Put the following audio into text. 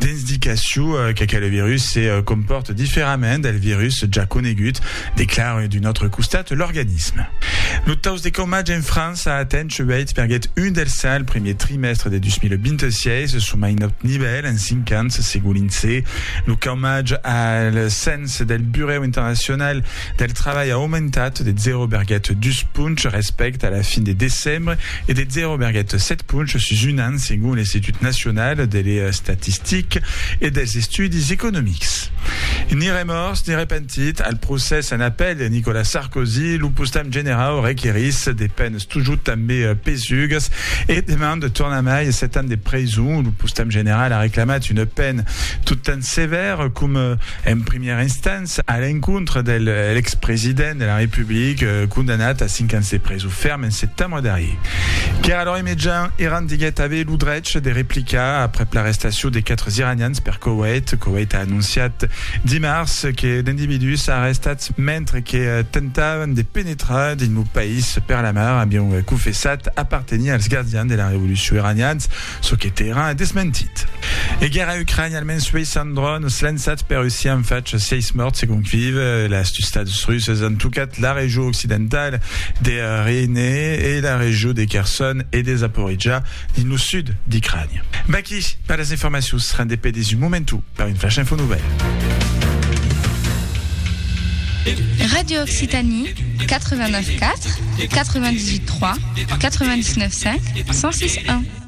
Dens d'icaciu qu'aquel virus se compòrte diferament del virus ja conegut, declare d'un autre costat l'organisme. Lo taus de caumatge en França a atent 8 perguèt 1 del 100 el primièr trimèstre de 2026, çò mai naut nivèl en 5 ans, segon l'INSEE. Lo caumatge al cens del Burèu Internacional del Trabalh a aumentat de 0,2 ponch respècte a la fin de decembre, e de 0,7 ponch sus un an segon l'Institut Nacional de l'Estatistic e dels Estudis Economics. Ni remòrs ni repentit, al procès en apèl de Nicolas Sarkozy, lo postam generau requerís de penes totjorn tanben pesugas e demanda tornamai 7 ans de preson. Lo postam general a reclamat una pena totjorn sevèra coma en primièra instància. A l'encontre de l'ex-president de la Republica condamnat a 5 ans de preson ferm en setembre darrier. Qu'èra lor immedian, Iran diguèt aver lo drech de replicar aprèp l'arrestacion de 4 iranians per Koweït. Koweït a anonciat dimars que d'individús arrestats mentre que tentavan de penetrar dins lo país per la mar avián confessat apartenir als gardians de la revolucion iranians. çò que Teheran a desmentit. E guèrra a Ucrània, almens 60 dròns lançats per Russia an fach 6 mòrts segon Kyiv. Las tustats russas an tocat la region occidental de Ryne e la region de Kherson e de Zaporizhzhia dins lo sud d'Ucrània. Vaqui per las informacions, rendepè dins un momentu per un flash info nouvèl. Radio Occitanie, 89.4, 98.3, 99.5, 106.1.